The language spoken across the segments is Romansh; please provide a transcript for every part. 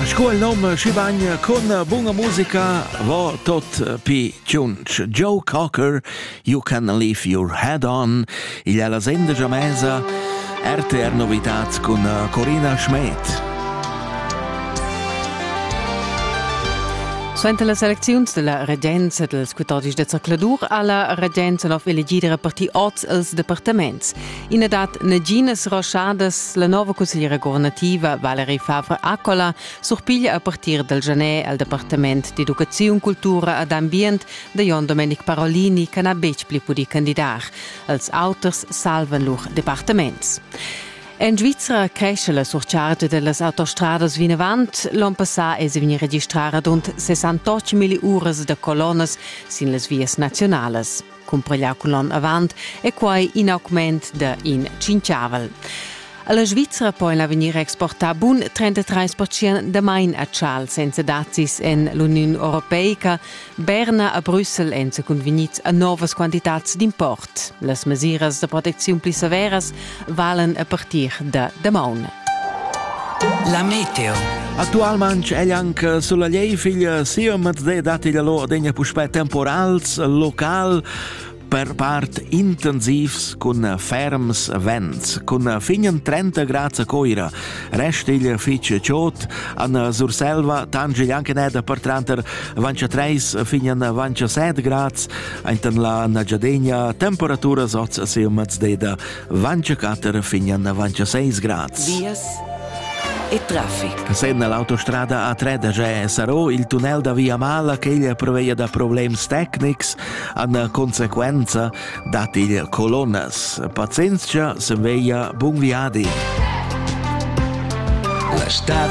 Sco il nome schibagna con bunga musica va tot pi tschunch. Joe Cocker, You Can Leave Your Head On, igl è la senda già mesa RTR Novitats cun eh, Corina Schmed. Suenter las elecziuns della regenza dels 14 de zercladur ha la regenza nov elegida repartir oz els departaments. I na dat naginas roschadas. La nova consigliera guvernativa Valerie Favre Accola surpiglia a partir dal genè al Departament d'educaziun, cultura ed ambient da Jon Domenic Parolini che n'ha betg pli pudì candidar. Els auters salvan lur departaments. En Svizra cresce la surchargia dellas autostradas vinavant. L'on passà è vegnì registrà radund 68 milliuras da colonnas sin las vias nazionalas. cumpareglià cun l'onn avant, è quai in augment da in tschinchavel. A la Svizra pon l'avegnir exportar bun 33% damain a chal senza dazis en l'Uniun Europeica. Berna a Brüssel èn sa cunvegnids a novas quantitads d'import. Las mesiras da protecziun pli severas valen a partir da damaun. La meteo. Actualment ella anche sulla Liefil sia Mazzè dati la loro degna puspè temporals local per part intensivs cun ferms vents. Cun finen 30 grad a Coira resta il fitch ciot an Surselva tangel anche neda per tranter vancia 3 finen vancia 7 grad Aintan la Nagyadegna temperaturas oz a se maz deda vancha 4 fin an vancha 6 grads. Vias e traffic. Senna l'autostrada A3 da Gè sarò il tunnel da Via Mala che il preveia da problems tecnics an conseguenza dat il colonnas. Pazienzia se veia bun viadi. La stad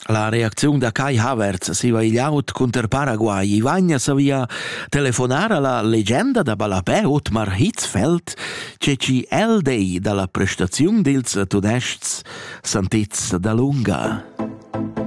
La reacziun da Kai Havertz siva igl aut cunter Paraguay. I vagna savia telefonar alla legenda da ballapè Otmar Hitzfeld, che ci el dei dalla prestaziun dils tudests Santizz da Lunga.